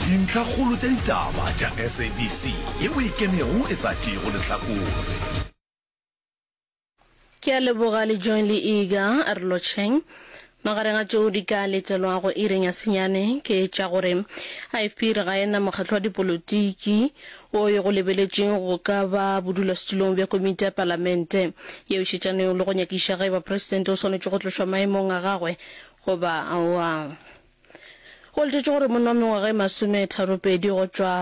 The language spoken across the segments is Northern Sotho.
Dintlhakgolo tša ditaba tša SABC yeo e kenego e sa tšeego lehlakore. Ke a leboga le Joy le Iga re lotšheng. Magareng a tšeo di ka letelwago iring ya senyane ke tša gore IFP e re ga e na mokgatlo wa dipolotiki wo yo go lebeletšwego go ka ba bodulasetulong bja komiti ya palamente yeo šetšanego le go nyakiša ge e ba presidente o swanetše go tlošwa maemong a gagwe goba aowa. Go letetšwe gore monna wa mengwaga e masometharo-pedi go tšwa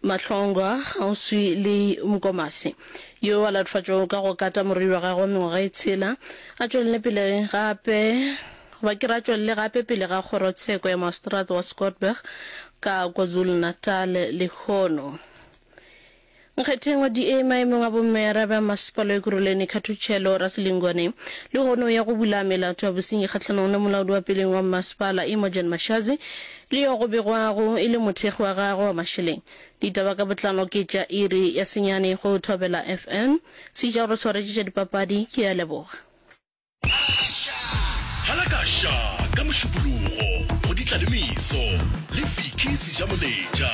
Mahlongwa kgauswi le Nkomasi yo a latofatšwago ka go kata morwedi wa gagwe wa mengwaga e tshela a tšwelele pele gape ba ke re a tšwelele gape pele ga kgorotsheko ya Maseterata wa Scottburgh ka KwaZulu-Natal lehono. Nkgethengwa DA maemong a bommearabe a Mmasepala Ekurhuleni Khathutshelo Rasilingwane lehono ya go bula melato ya bosenyi kgahlanong le molaodi wa peleng wa mmasepala Imogen Mashazi le yo go begwago e le mothekgi wa gagwe wa mašeleng. Ditaba ka botlalo ke tša iri ya senyane go Thobela FM. Sejaro Tshwaretši tša dipapadi ke a leboga. Halakasha ka Mošupologo go Ditlalemeso le Vicky Sejamoletša.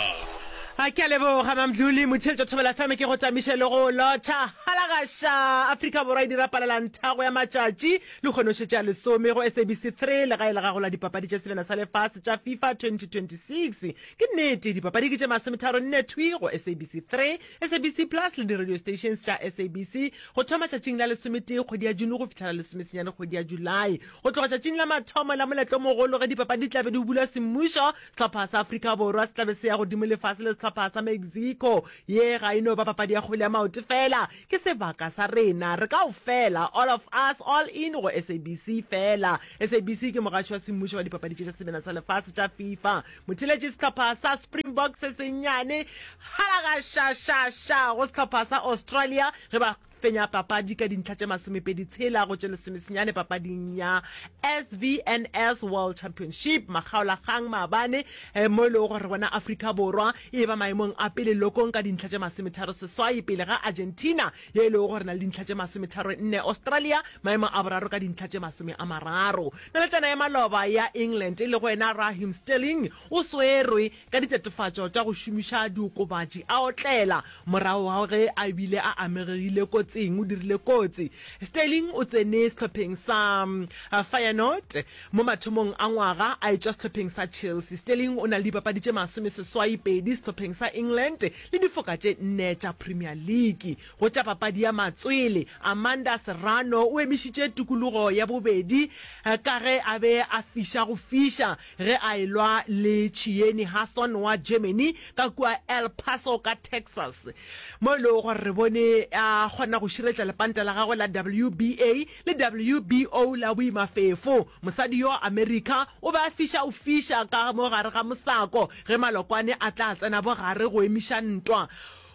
A ke a leboga Mamdluli Motheletšo Thobela FM ke go tamiše le go lotšha Halakasha Afrika Borwa e dira palelanthago ya matšatši le kgonoše tša lesome go SABC 3 legae la gago la dipapadi tša selena sa lefase tša FIFA 2026 ke nnete dipapadi ke tše masometharo nne thwi go SABC 3 SABC Plus le di-radio stations tša SABC go thoma tšatšing la lesometee kgwedi ya June go fihla la lesomesenyane kgwedi ya Julae. Go tloga tšatšing la mathomo la moletlo o mogolo ge dipapadi di tlabe di bula semmušo, sehlopha sa Afrika Borwa se tlabe se ya godimo lefase le sehlopha sa Mexico. Ye ga e no ba papadi ya kgwele ya maoto fela, ke sebaka sa rena re kaofela, all of us, all in go SABC fela. SABC ke mogaši wa semmušo wa dipapadi tše tša sebena sa lefase tša FIFA. Motheletši sehlopha sa Springbok se sennyane halagašašaša go sehlopha sa Australia ge ba fenya papadi ka dintlha tše masomepedi tshela go tše lesomesenyane papading ya SVNS World Championship makgaolakgang maabane eh, mo e lego gore gona Afrika Borwa e ba maemong a pele lokong ka dintlha tše masometharo seswai pele ga Argentina ye e lego gore na le dintlha tše masometharo nne Australia maemo a boraro ka dintlha tše masome a mararo. Naletšana ya maloba ya England e lego yena Raheem Sterling o swerwe ka ditatofatšo tša go šomiša diokobatši a otlela morago ga ge a bile a amegegile kotsing. O dirile kotsi Sterling o tsene sehlopheng sa Feyenoord mo mathomong a ngwaga a etšwa sehlopheng sa Chelsea. Sterling o na le dipapadi tše masome seswai pedi sehlopheng sa England. le difoka tše nne tša Premier League. Go tša papadi ya matswele, Amanda Serrano o emišitše tukulugo ya bobedi ka ge a be a fiša go fiša ge a e-lwa le Chiyeni Hasson wa Germany ka kua El Paso ka Texas, mo e lego gore re bone a kgona go širetša lepanta la gagwe la WBA le WBO la boimafefo. Mosadi yo America o be a fiša go fiša ka mo gare ga mosako Ge Malokwane a tla tsena bogare go emiša ntwa,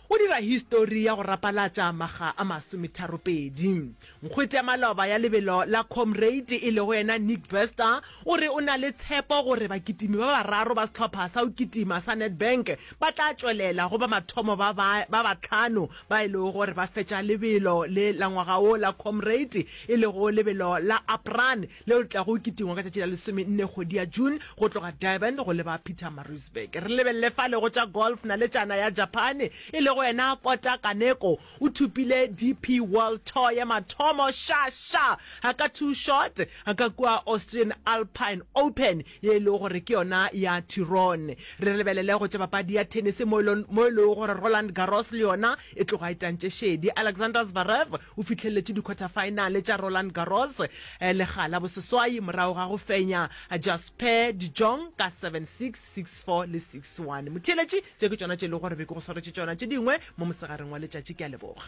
o dira histori ya go rapalatša makga a masometharopedi. Nkgwete ya maloba ya lebelo la Comrade e lego yena Nick Bester o re o na le tshepo gore bakitimi ba bararo ba sehlopha sa go kitima sa Nedbank ba tla tšwelela go ba mathomo ba ba bahlano ba e lego gore ba fetša lebelo le la ngwaga wo la Comrade e lego lebelo la Aprane leo le tlago kitingwa ka tšatši la lesomenne kgwedi ya June go tloga Durban go leba Pietermaritzburg. Re lebelele fale go tša golf, naletšana ya Japane e lego yena Kota Kaneko o thopile DP World Tour ya mathomo xa xa a ka two shot a ka kua Austrian Alpine Open ye e lego gore ke yona ya Tyrone. Re lebelele go tša papadi ya tennis mo e lego gore Roland Garros le yona E tloga e tantše šedi, Alexander Zverev o fihleletše dikhwathafaenale tša Roland Garros lega la boseswai morago ga go fenya Jasper de Jong ka seven, six, six, four le six, one. Motheeletši, tše ke tšona tše e lego gore be ke go swaretše tšona tše dingwe mo mosegareng wa letšatši. Ke a leboga.